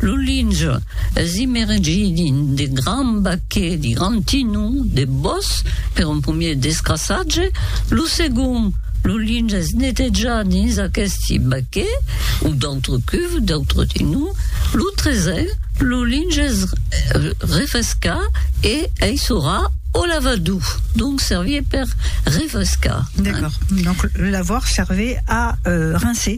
Lo linge es imergidi de gran baquet de gran tinhon de bòs per un promier descrassatge, lo segond, lo linge es netejat dins aqueste baquet o d'autre cuve, d'autre tinhon, lo tresen, lo linge es refrescat e aissorat au lavadou, donc servir per refrescar. D'accord, donc le lavoir servait à rincer.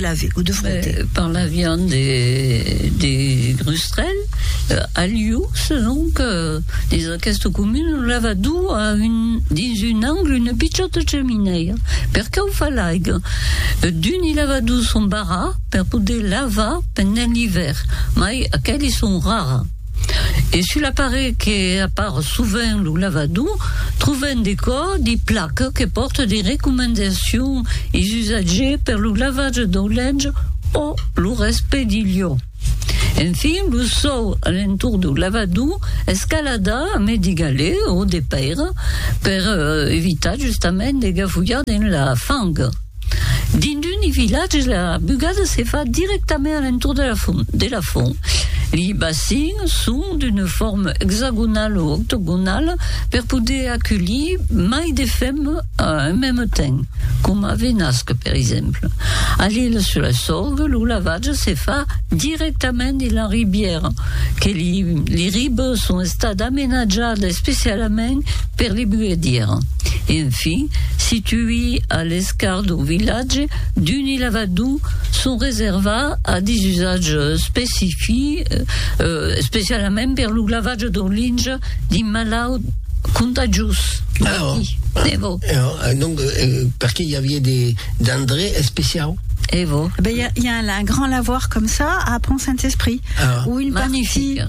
Lave o de frote? Ben, parlavián de, de Grustrèl, a lieu, selon que dins aquesta comuna lo lavador a un, dins un angle una pichòta chaminèia. Per qué o fa l'aiga? D'un i lavadors son barrats per poder lavar pendent l'ivèrn, mai aqueles son rara. E sul aparelh que apar sovent lo lavador, trobem de cò de placa que pòrta de recomendacions e usatges per lo lavatge dau lenç o lo respè de liò. En fin, lo sòu a l'entorn dau lavador es calada amb de galets o de pèira per evitar justament de gafulhar dins la fang. Dinduni vilatge la bugada se fa directament a l'entorn de la font. De la font. Li bacins son d'una forma exagonala o octogonala per poder aculhir mai de femmes a un meme temps, coma Venasque, per exemple. A l'Ile sur la Sorgue, lo lavatge se fa directament dins la ribièra, que li, li ribes son Stad amenatjada especialament per li buedièr. Enfin, situi a l'escar dau vilatge, d'uni lavadou son reserva a dis usatge specifi, especialament per lo lavatge dau linge di malaut contagiós. Evo. Donc, perqué i avié de d'endrè especiau? Evo. Ben, i a un grand lavoir com ça a Pont-Saint-Esprit. Magnifique.